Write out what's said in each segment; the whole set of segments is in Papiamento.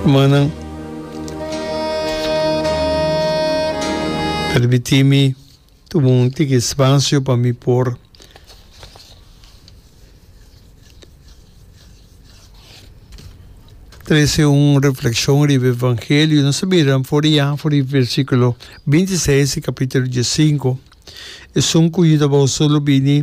Hermannan, permitimi tuma un tiki spasio pa mi por trese un reflekshon riba evangelio. Nos a mira for di ya, for di versikulo binti seis di kapitulo diesinko. Esun ku Yu tabata solo bini.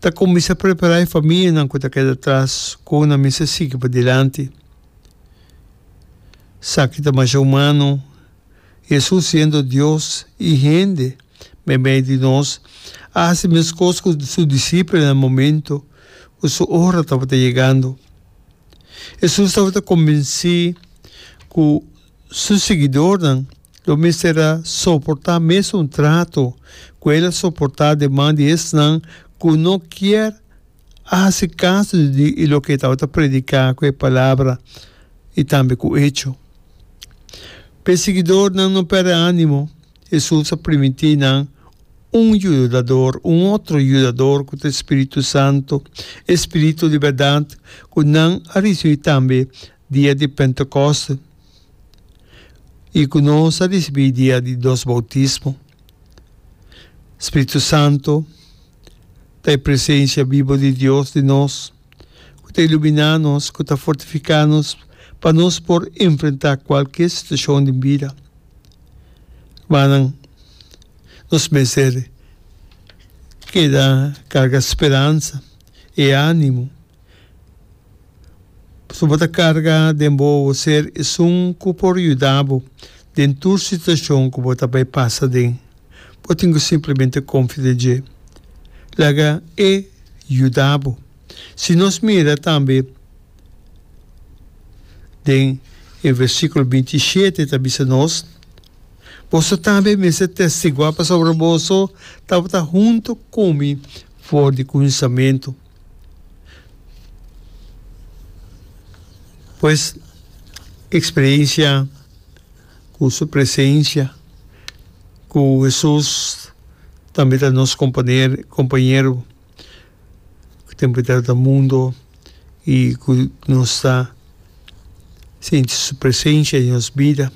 Ta kuminsá prepará e famianan ku ta keda tras kon nan mester sigui pa dilanti. Sa ki ta masha humano, Hesus siendo Dios i hende den medio di nos, a hasi meskos ku su disipelnan na momentu ku su ora tabata yegando. Hesus tabata konvensí ku. Su siguidornan lo mester a soportá mes un trato ku el a soportá di man di esnan ku no kier a hasi kaso di loke e tabata prediká ku e palabra i tambe ku echo. Pa e siguidornan no pèrdè ánimo, Hesus a primintí nan un yudador, un otro yudador ku ta e spiritu santu, e Spiritu di bèrdat ku nan a risibí tambe Dia di Pentekoste, i ku nos a risibí dia di nos boutismo, Spiritu Santu ta e presensia bibu di Dios den nos ku ta iluminá nos, ku ta fortifiká nos pa nos por enfrentá kualke situashon den bida. Rumannan, nos mester keda karga speransa i ánimo. Su bo ta karga den bo ser esun ku por yuda bo den tur situashon ku bo ta bai pasa den. Bo tin ku simplemente konfia den dje. Laga E yuda bo. Si nos mira tambe den e versíkulo binti i shete ta bisa nos, Boso tambe mester testiguá pasobra boso tabata huntu ku mi for di kunsamentu. Pues experiencia cu su presencia cu Jesus tambe ta nos companero compañero tempo ta ta mundo y cu nos ta sinti su presencia den nos bida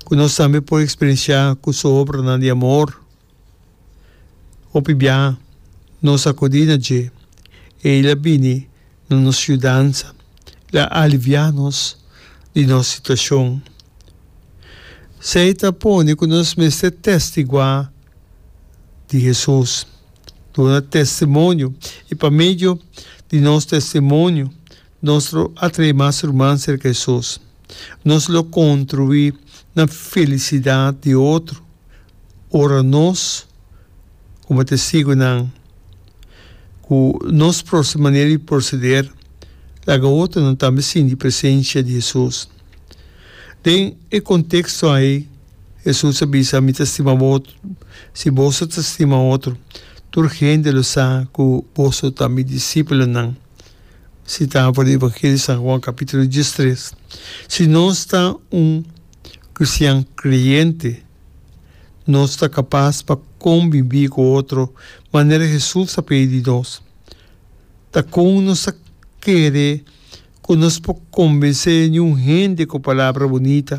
cu nos tambe por experiencia cu su obranan di amor. Hopi biaha nos a kudí na dje. Ei la bini na nos yudansa, el a aliviá nos di nos situashon. Esei ta pone ku nos mester tèstiguá di Hesus, duna testimonio i pa medio di nos testimonio Nos lo atrae mas ruman serka Hesus. Nos lo contribui na felicidad di otro ora nos, como Testigonan, cu nos proste manera di proceder laga otronan tambe sinti presencia di Hesus. Den e contexto ai, Hesus a bisa, Mi ta stima boso. Si boso ta stima otro, tur hende lo sa cu boso ta mi discipulonan. Si ta por riba ke di San Juan capítulo diestres, si nos ta un cristian creyente, nos ta capas pa conbibi cu otro manera Jesús a pidi di nos. Ta con nos ta kere cu nos por conbensé niun hende cu palabra bunita?